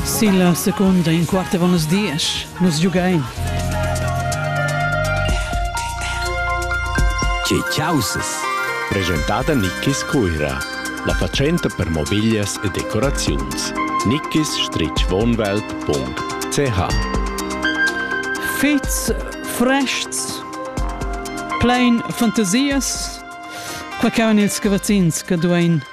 Sin la secunda in quart avon las diesch. Nus giugain. Tge caussas? Presentada Nickis Cuira, la fatschenta per mobiglias e decoraziuns. nickis-wohnwelt.ch Fits frests, plein fantasias, quai cauan ils cavazzins che duein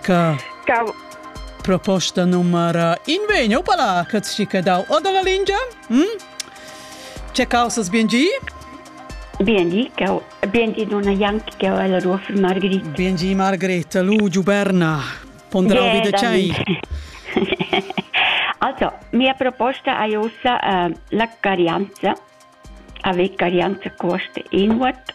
Ca proposta numera invegno pala che ci che dau o dalla lingia? Hm? C'è causas bien gi? Bien gi, cau bien gi donna Jank che ho la tua für Margherita. Bien gi Margherita, lu giuberna. Ponderau yeah, vide c'hai. Also, mia proposta è ossa uh, la carianza. Ave carianza costa inward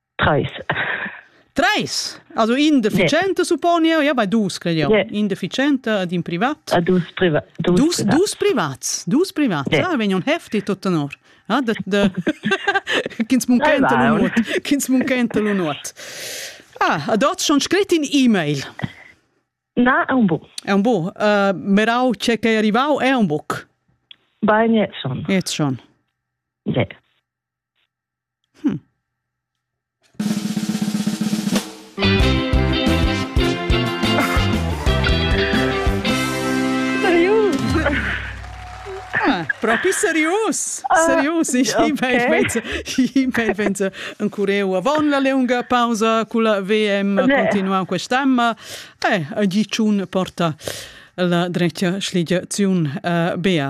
Treis. Treis? Also in deficiente supponi io, ja bei dus cred io. Yeah. In deficiente ed in privat. A dus privat. Dus, dus, privats. dus privats. Dus privats. Yeah. Ah, vegn un hefti tot honor. Ah, de, de, Kins munkenta lunot. Kins munkenta lunot. Ah, ad oz schon scrit in e-mail. Na, è un buon. È un buon. Uh, merau c'è che è arrivau è un buc. Bene, schon. Jetzt schon. Yeah. Propi serius serius Venza en cureu avon la leunga pausa culla VM continuau quest'emma e a Giciun porta la dretga schligiaziun Bea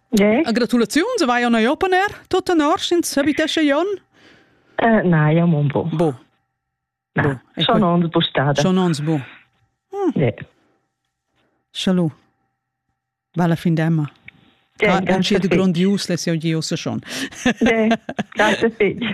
Yeah. Gratulaziuns, vai on open air, tut en Orschins, habitesce Jon? Uh, na, io mon bo. Bo. Na, schon ons bo stada. Schon ons bo. Hm. Yeah. Chalut. Valla fin d'Emma. Yeah, ah, è un grandius lezione di ossa schon. Yeah, grazie figli.